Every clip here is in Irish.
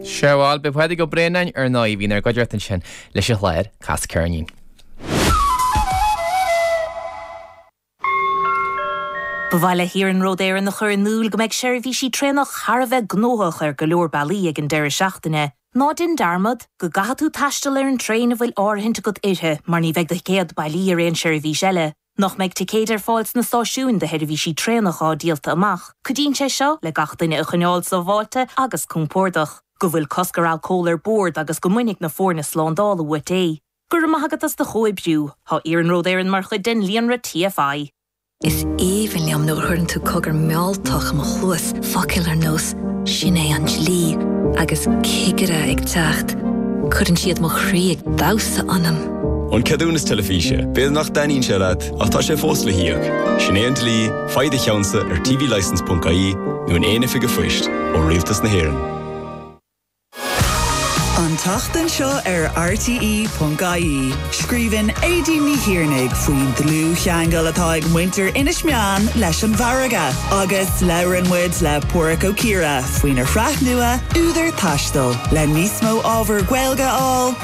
Sea, bhal, b'é Pádraig Ó Braonáin, ar ndóigh, a bhí inár gcuideachta ansin leis an chlár, Cas Ceirnín. Ba mhaith le hIarnród Éireann a chur in iúl go mbeidh seirbhísí traenach thar a bheith gnóthach ar go leor bealaí ag an deireadh seachtaine. Ná déan dearmad go gcaithfidh tú taisteal ar an traein a bhfuil áirithint agat uirthi mar ní bheidh do thicéad bailí ar aon seirbhís eile. nach mbeidh ticéid ar fáil sna stáisiúin do sheirbhísí traenach atá díolta amach, cuidíonn sé seo le gach duine a choinneáil sábháilte agus compordach. go bhfuil cosc ar alcól ar bord agus go mbainfidh na foirne slándála uait é. Go raibh maith agat as do chomhoibriú. Tá Iarnród Éireann mar chuid den líonra TFI. Is aoibhinn liom nuair a chuireann tú cogar mealltach i mo chluas, focail ar nós 'Sin é an dlí' agus 'Cigire ag teacht', cuireann siad mo chroí ag damhsa ionam! An ceadúnas teilifíse, b'fhéidir nach dtaitníonn sé leat ach tá sé fós le híoc. Sin é an dlí, faigh do cheannsa ar tvlicence.ie nó in aon oifig a'phoist ó Rialtas na hÉireann. An tseachtain seo ar RTE.ie, scríobhann Aedín Ní Thiarnaigh faoin dlúthcheangal atá ag muintir Inis Meáin leis an bhfarraige agus labhrann muid le Páraic Ó Ciardha faoina shraith nua, Údar Taistil, le níos mó ábhar Gaeilge a fháil.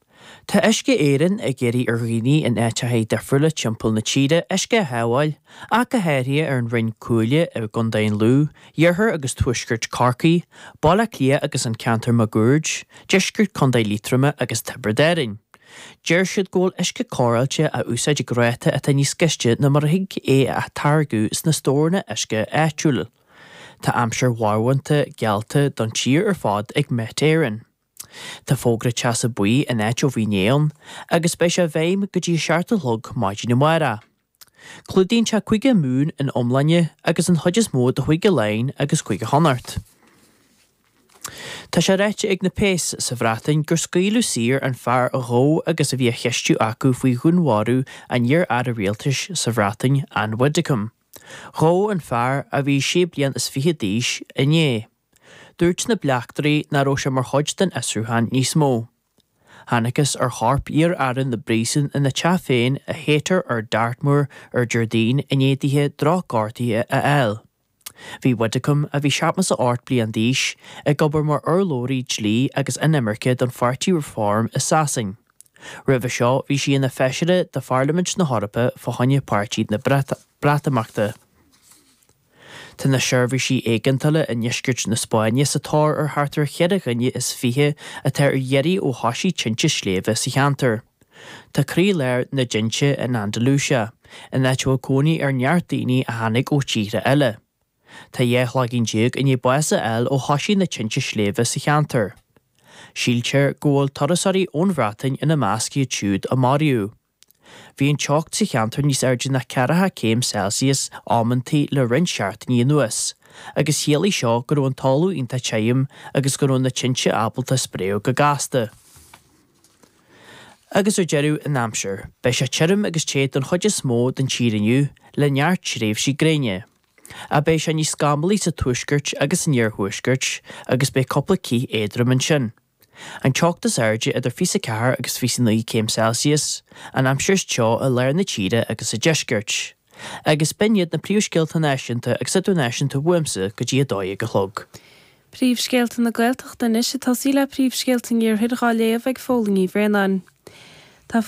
Tá Uisce Éireann ag iarraidh ar dhaoine in áiteacha difriúla timpeall na tíre uisce a shábháil, ach go háirithe ar an Rinn Cuaille i gContae an Lú, iarthar agus tuaisceart Chorcaí, Baile Átha Cliath agus an ceantar máguaird, deisceart Chontae Liatroma agus Tiobraid Árainn. Deir siad go bhfuil uisce cóireáilte á úsáid ag ráta atá níos gaiste ná mar a thig é a atáirgeadh sna stóranna uisce áitiúla. Tá aimsir mharbhánta geallta don tír ar fad ag Met Éireann. Tá fógra teasa buí in áit ó bhí inné ann agus beidh sé i bhfeidhm go dtí a seacht a chlog maidin amárach. Clúdaíonn sé Cúige Mumhan ina iomláine agus an chuid is mó de Chúige Laighean agus Cúige Chonnacht. Tá sé ráite ag na péas sa Bhreatain gur scaoileadh saor an fear a gabhadh agus a bhí á cheistiú acu faoi dhúnmharú an iar-aire rialtais sa Bhreatain, Ann Widdecombe. Gabhadh an fear, a bhí sé bliain is fiche d'aois, inné. Dúirt na bleachtairí nach raibh sé mar chuid den fhiosrúchán níos mó. Thánagthas ar chorp iar-aire na bpríosún ina teach féin i Haytor ar Dartmoor ar Déardaoin i ndiaidh dithe drochghortuithe a fháil. Bhí Widdecombe, a bhí seachtó is a hocht bliain d'aois, ag obair mar urlabhraí dlí agus inimirce don pháirtí Reform i Sasain. Roimhe seo bhí sí ina feisire de Pharlaimint na hEorpa fá choinne Páirtí na Breatimeachta. Tá na seirbhísí éigeandála i ndeisceart na Spáinne sa tóir ar thart ar cheithre dhuine is fiche atá ar iarraidh ó thoisigh tinte sléibhe sa cheantar. Tá croílár na dtinte in Andalucia, in áit a bhfuil cónaí ar neart daoine a tháinig ó thíortha eile. Tá dhá chloigeann déag i ndiaidh bás a fháil ó thoisigh na tinte sléibhe sa cheantar. Síltear go bhfuil turasóirí ón Bhreatain ina measc siúd a maraíodh. Bhí an teocht sa cheantar níos airde ná ceathracha céim Celsius amantaí le roinnt seachtainí anuas, agus chiallaigh seo go raibh an talamh iontach tirim agus go raibh na tinte ábalta spréadh go gasta. Agus ar deireadh an aimsir. Beidh sé tirim agus te don chuid is mó den tír inniu, le neart tréimhsí gréine. Ach beidh sé níos scamallaí sa tuaisceart agus san iarthuaisceart, agus beidh cúpla cith éadrom ansin. An teocht is airde idir fiche is a 4 agus fiche is a 9 céim Celsius, an aimsir is teo i lár na tíre agus sa deisceart. Agus b'in iad na príomhscéalta náisiúnta agus idirnáisiúnta uaimse go dtí a dó dhéag a chlog. Príomhscéalta na Gaeltachta anois ag tosaí le príomhscéalta an iarthair dhá léamh ag Póilín Ní Bhraonáin. Tá.